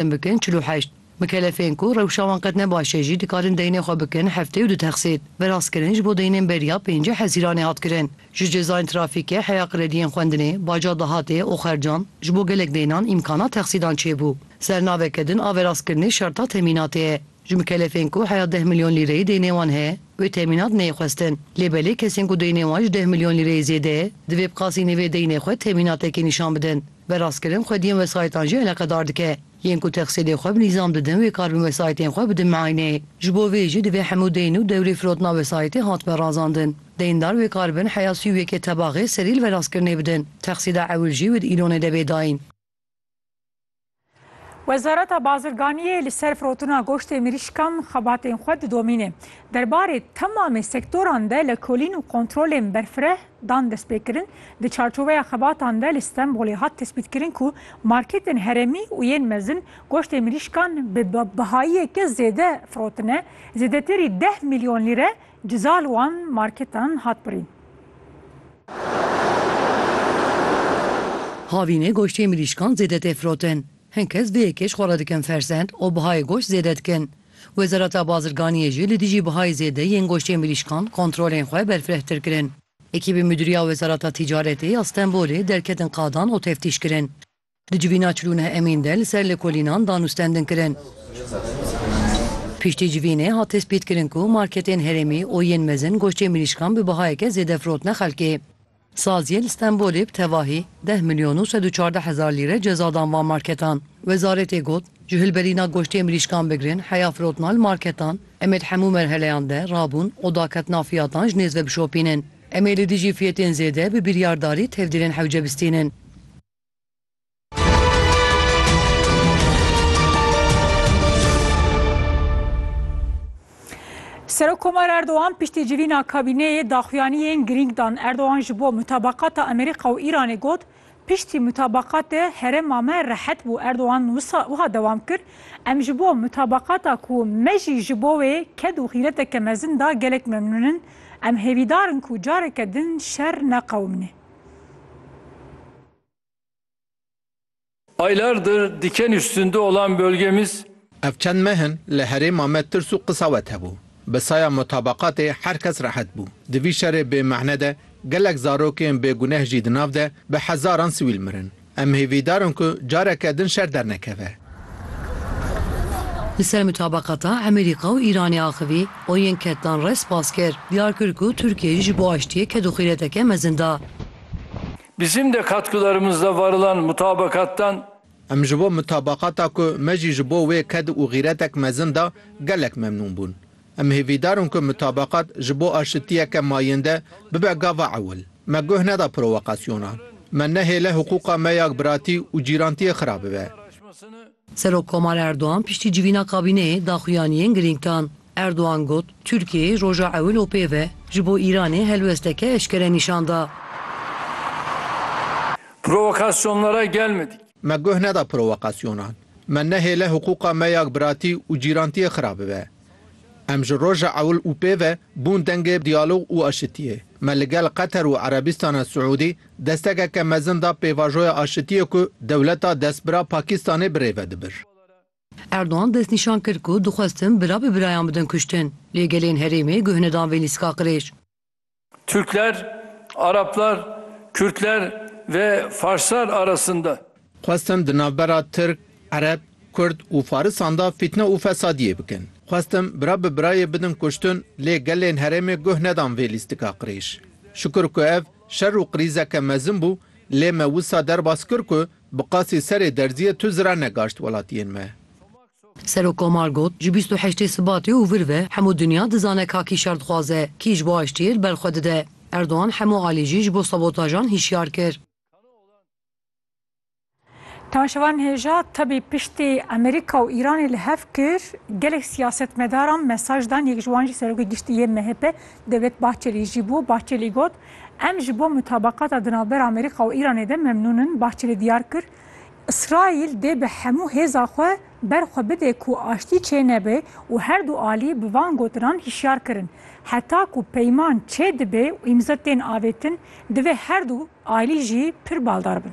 Em bikin çil û heşt. Mikelefên ku rewşa wan qet ne baş e jî dikarin deynê xwe bikin heftê û du texsîd. Veraskirin ji bo deynên beriya pêncî hezîranê hat kirin. Ji cezayên trafîkê heya krediyên xwendinê, baca dahatê û xercan, ji bo gelek deynan îmkana texsîdan çêbû. Sernaveke din a veraskirinê şerta temînatê ye. Ji mikelefên ku heya deh milyon lîreyê deynê wan heye, wê temînat neyê xwestin. Lê belê kesên ku deynê wan ji deh milyon lîreyê zêde ye, divê bi qasî nêvê deynê xwe temînatekê nîşan bidin. Berastkirin xwediyên wesayîtan jî eleqedar dike. Yên ku texsîlê xwe bi nîzam didin wê karbin wesayîtên xwe bidin miayneyê. Ji bo vê jî divê hemû deyn û dewrê firotina wesayîtê hatbe razandin. Deyndar wê karbin heya sî û yekê tebaxê serî li verastkirinê bidin. Texsîla ewil jî wê di îlonê de bê dayîn. Wezareta Bazirganiyê li ser firotina goştê mirîşkan xebatên xwe didomîne. Derbarê temamê sektoran de lekolîn û kontrolên berfireh dan destpêkirin, di çarçoveya xebatan de li Stenbolê hat tespîtkirin ku marketên herêmî û yên mezin goştê mirîşkan bi bihayiyeke zêde firotine, zêdetirî deh milyon lîre Ceza li wan marketan hat birîn. Havînê goştê mirîşkan zêde tê firotin. Hin kes vê yekê ji xwe re dikin fersend û bihayê goşt zêde dikin. Wezareta Bazirganiyê jî li dijî bihayê zêde yên goştê mirîşkan kontrolên xwe berfirehtir kirin. Ekîbên Mudîriya Wezareta Tîcaretê ya Stenbolê derketin qadan û teftîş kirin. Di civîna Çilûne Emîn de li ser lêkolînan dan û stendin kirin. Piştî civînê hat tespîtkirin ku marketên herêmî û yên mezin goştê mirîşkan bi bihayeke zêde firotine xelkê. Saziyê li Stenbolê bi tevahî deh milyon û sed û çardeh hezar lîre ceza dan van marketan. Wezaretê got, Ji hilberîna goştê mirîşkan bigirin heya firotina li marketan, em ê di hemû merheleyan de rabûn û daketina fiyatan ji nêz ve bişopînin. Em ê li dijî fiyetên zêde bi biryardarî tevdîrên hewce bistînin. Serokomar Erdogan piştî civîna kabîneyê daxuyaniyên girîng dan. Erdogan ji bo mutabaqata Amerîka û Îranê got, Piştî mutabaqatê herêma me rehet bû. Erdogan wisa wiha dewam kir, Em ji bo mutabaqata ku me jî ji bo wê ked û xîreteke mezin da gelek memnûn in. Em hêvîdar in ku careke din şer neqewimîne. Aylardır diken üstünde olan bölgemiz. Ev çend meh in li herêma me tirs û qisawet hebû. Bi saya mutabaqatê her kes rehet bû. Di vî şerê bêmehne de gelek zarokên bêguneh jî di nav de bi hezaran sivîl mirin. Em hêvîdar in ku careke din şer dernekeve. Li ser mutabaqata Emerîka û Îranê axivî, û yên ketdan re spas kir. Diyar kir ku Tirkiye jî ji bo aştiyê kedûxîreteke mezin da. Bizim de katkılarımızda varılan mutabakattan. Em ji bo mutabaqata ku me jî ji bo wê ked û xîretek mezin da gelek memnûn bûn. Em hêvîdar in ku mutabeqat ji bo aşitiyeke mayînde bibe gava ewil. Me guh neda provokasyonan. Me nehêle hiqûqa me ya biratî û cîrantiyê xira bibe. Serokkomar Erdogan piştî civîna kabîneyê daxuyaniyên girîng dan. Erdogan got, Tirkiyeyê roja ewil û pê ve ji bo Îranê helwesteke eşkere nîşan da. Provokasyonlara gelmedik. Me guh neda provokasyonan. Me nehêle hiqûqa me ya biratî û cîrantiyê xira bibe. Em ji roja ewil û pêve bûn dengê diyalog û aşitiyê. Me li gel Qeter û Erebîstana Siûdî destekeke mezin da pêvajoya aşitiyê ku dewleta destbira Pakîstanê bi rê ve dibir. Erdogan destnîşan kir ku dixwestin bira bi birayan bidin kuştin, lê gelên herêmê guh nedan vê lîstika qirêj. Türkler, Araplar, Kürtler ve Farslar arasında. Xwestim di navbera Tirk, Ereb, Kurd û Farisan de fîtne û fesadiyê bikin. Xwestim bira bi birayê bidin kuştin lê gelên herêmê guh nedan vê lîstika qirêj. Şukur ku ev şer û qirîzeke mezin bû lê me wisa derbas kir ku bi qasî serê derziyê tu zira negaşt welatiyên me. Serokkomar got, Ji bîst û heştê Sibatê û vir ve hemû dinya dizane ka kî şer dixwaze, kî ji bo aştiyê li ber xwe dide. Erdogan hemû alî jî ji bo sabotajan hişyar kir. Tanşevan hêja tebî piştî Amerîka û Îranê li hev kir, gelek siyasetmedaran mesaj dan, yek ji wan jî Serokê Giştî yê MHP Devlet Bahçelî jî bû. Bahçelî got, Em ji bo mutabaqata di navbera Amerîka û Îranê de memnûn in. Bahçelî diyar kir, Îsraîl dê bi hemû hêza xwe ber xwe bide ku aştî çênebe û herdu alî bi van gotinan hişyar kirin. Heta ku peyman çêdibe û îmza tên avêtin, divê herdu alî jî pir baldar bin.